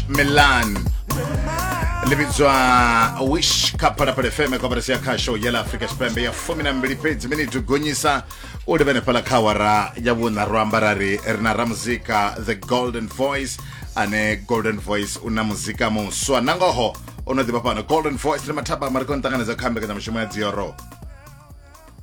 milan ḽi vhidzwa wish kha phalaphala fm koperasi ya khasho ya ḽa afrika tshipembe ya fumi na mbili fhedzi miniti gonyisa u livhene fhala kha awara ya vhuṋa ro amba ra ri ri na ramuzika the golden voice ane golden voice u na muzika muswa na ngoho o no ḓivha fhano golden voice ndi mathaba mari ko nṱanganedza kha mbekanyamushumo ya dzioro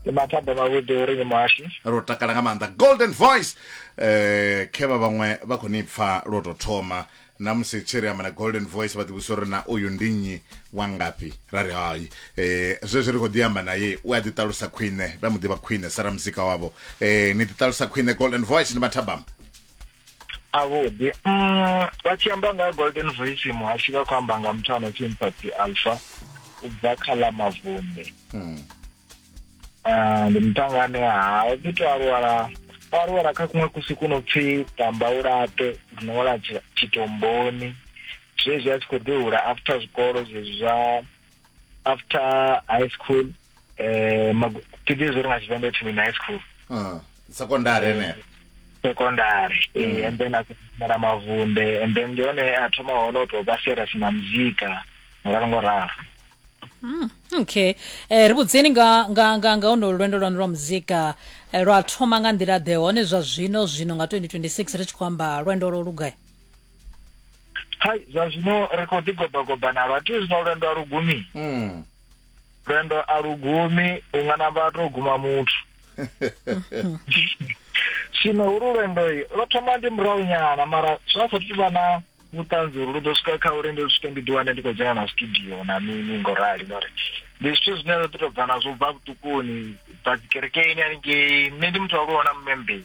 ndi mathada mavhuḓi uri ni muhashi ro takala nga maanḓa golden voice eh khevha vhaṅwe vha khou ni pfa lwo tou thoma na musi tshi ri amba na golden voice vha ḓivhusa uri na uyu ndi nnyi wa ngafhi ra ri hai eh zwezwi ri khou ḓi amba naye u a ḓiṱalusa khwine ra mu ḓivha khwine sa ramuzika wavho eh ni ḓiṱalusa khwine golden voice ndi mathabama a vhuḓi mm, vha tshi amba nga golden voice muhashi vha khou amba nga muthu ano pfi mpati alpha u bva kha ḽa mavunḓe hmm. ah, ndi mutanga ane ha o ḓi to aluwala o aluwala kha kuṅwe kusi ku no pfi tamba u laṱe rino wala tshitomboni zwezwi a tshi khou ḓi hula after zwikolo zwezwi zwa after high school eh magu- thi ḓivhi uri nga tshivenḓa ipfi mini high school Ah, sekondari henefho secondary eh, and then akumela mavunde and then ndi hone a thoma hone u tou vha serious na muzika ngoralo ngoralo okay eh, ri vhudzeni nga nga nga nga ono lwendo lwanu lwa muzika eh, lwa thoma nga nḓila ḓe hone zwa zwino zwino nga 2026 ri tshi khou amba lwendo lwo lugai hai zwa zwino ri khou ḓi gobagoba nalo a ti zwino lwendo a lugumi mm. lwendo a lugumi u nga na vhato guma muthu zwino uri lwendo lwo thoma ndi murahu nyana mara zwa sa thu vha na vhuṱanzi uri lu ḓo swika kha uri ndi swike ndi ḓiwane ndi khou dzhena na studio na mini ngo rali ngori ndi zwithu zwine ro ḓi tou bva nazwo bva vhuṱukuni bva dzikerekeni haningei nṋe ndi muthu wa luona mmembei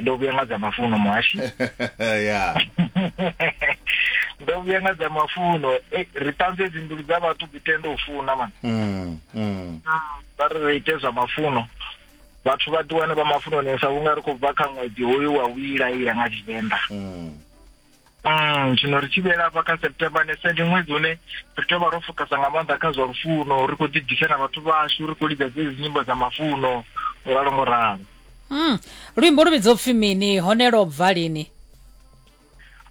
ndo vhuya nga dza mafuno muhashi ya ndo vhuya nga dza mafuno eh, ri ṱanze dzi mbilu dza vhathu dzi tende u funa man mm, mm. vha ri ri ite zwa mafuno vhathu vha ḓiwane vha mafunonesa vhunga ri khou bva kha ṅwedzi hoyu wa u ilaila nga tshivenḓa mm. Mm, zwino ri tshi vhuyela hafha kha september ne ndi ṅwedzi une ri tea vha ro fokasa nga maanḓa kha zwa lufuno ri khou ḓibvisela vhathu vhashu ri khou lidza dzedzi nyimbo dza mafuno ngo ralo ngo ralo mm. luimbo lu vhidzo pfhi mini hone lo bva lini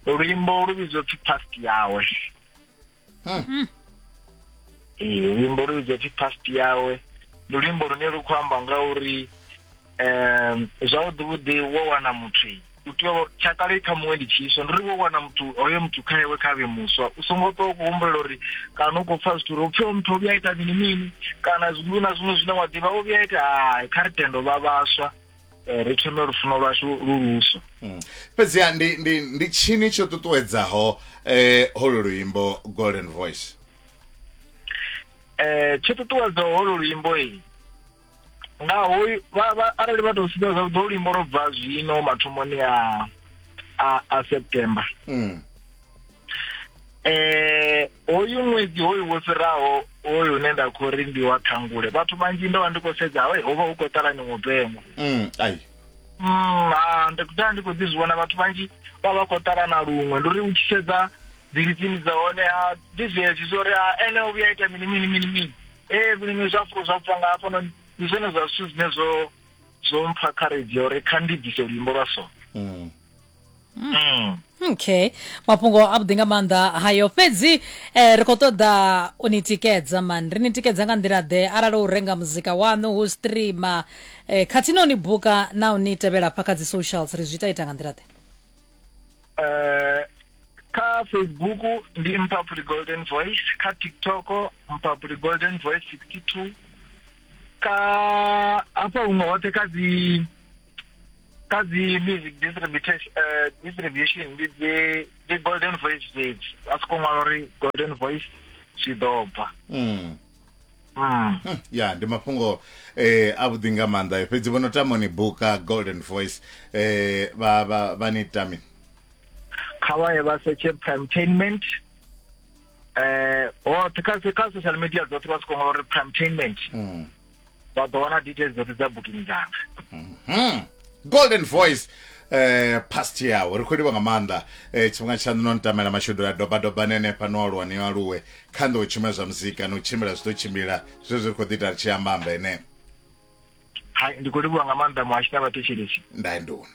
luimbo lu vhidzo pfhi past yawe Ee, luimbo lu vhidzwa pfi past yawe ndi luimbo lune lu khou amba nga uri um zwavhuḓi vhuḓi wo wana muthu u tea u- tsha kale i kha muṅwe ndi tshiswa ndi uri wo wana muthu hoyo muthu kha iwe kha vhe muswa u songo ṱwa u khou humbulela uri kana u khou pfa zwithu uri upfi o muthu o vhuya a ita mini mini kana zwiṅwe na zwiṅwe zwine wa ḓivha o vhuya a ita hai kha ri tende u vha vhaswa Eh, ri thome lufuno lwashu lu luswa mm. fhedziha ndi ndi ndi tshini tsho ṱuṱuwedzaho eh holo luimbo golden voice eh tsho ṱuṱuwedzaho holo luimbo i nga ho vha vha arali vha tou sika zwa ḓo luimbo lwa bva zwino mathomoni a a September mm. eh hoyu ṅwedzi hoyu wo fhiraho hoyu une nda khou ri ndi wa ṱhangule vhathu vhanzhi ndo vha ndi khou sedza hawe ho vha hu khou ṱalani mupengwa mm, ai mm, ha ndi daa ndi khou ḓi zwi vhona vhathu vhanzhi vha vha khou ṱalana luṅwe ndi uri u tshi sedza dzilitsini dza hone a ndi zwezwi zwo ri a ene o vhuya ita mini mini mini mini ee vhulimi zwa fulo zwa pfa nga hafhanoni ndi zwone zwa zwithu zwine zwo zwo mpha kharedzhi ya uri kha ndi bvise luimbo lwa so mm. mm. okay mafhungo a vhuḓi nga maanḓa hayo fhedzi eh, ri khou ṱoḓa u ni tikedza mani ri ni tikedza nga nḓila ḓe arali u renga muzika waṋu hu streama eh, khathihi na u ni buka na u ni tevhela pha kha dzi socials ri zwi ita ita nga nḓila ḓe eh, kha facebook ndi mpapuli golden voice kha tiktok mpapuli golden voice 62 ka hafha huṅwe hoṱhe kha dzi kha dzi music distribution uh, distribution ndi dzi dzi golden voice stage a siko ṅwala uri golden voice zwi ḓo bva mm. Mm. Hmm, ya ndi mafhungo eh a vhuḓi nga maanḓa fhedzi vho no tama ni buka golden voice eh vha vha vha ni tami kha vha ye vha setshe primetainment eh hoṱhe kha kha social media dzoṱhe vha siko ṅwala uri primetainment mm. vha ḓo wana details dzoṱhe dza booking dzanga mhm. golden voice eh past yawo ri khou livha nga maanḓa eh tshifhinga tshaṋu no ntamela mashudu la doba doba nene pa no aluwa ni aluwe kha nḓo tshumela zwa muzika no tshimbila zwi ḓo tshimbila zwe zwi khou ḓi ita ri tshi amba amba ene hai ndi khou livhuwa nga maanḓa muhashi na vhathetshelesi ndaendoni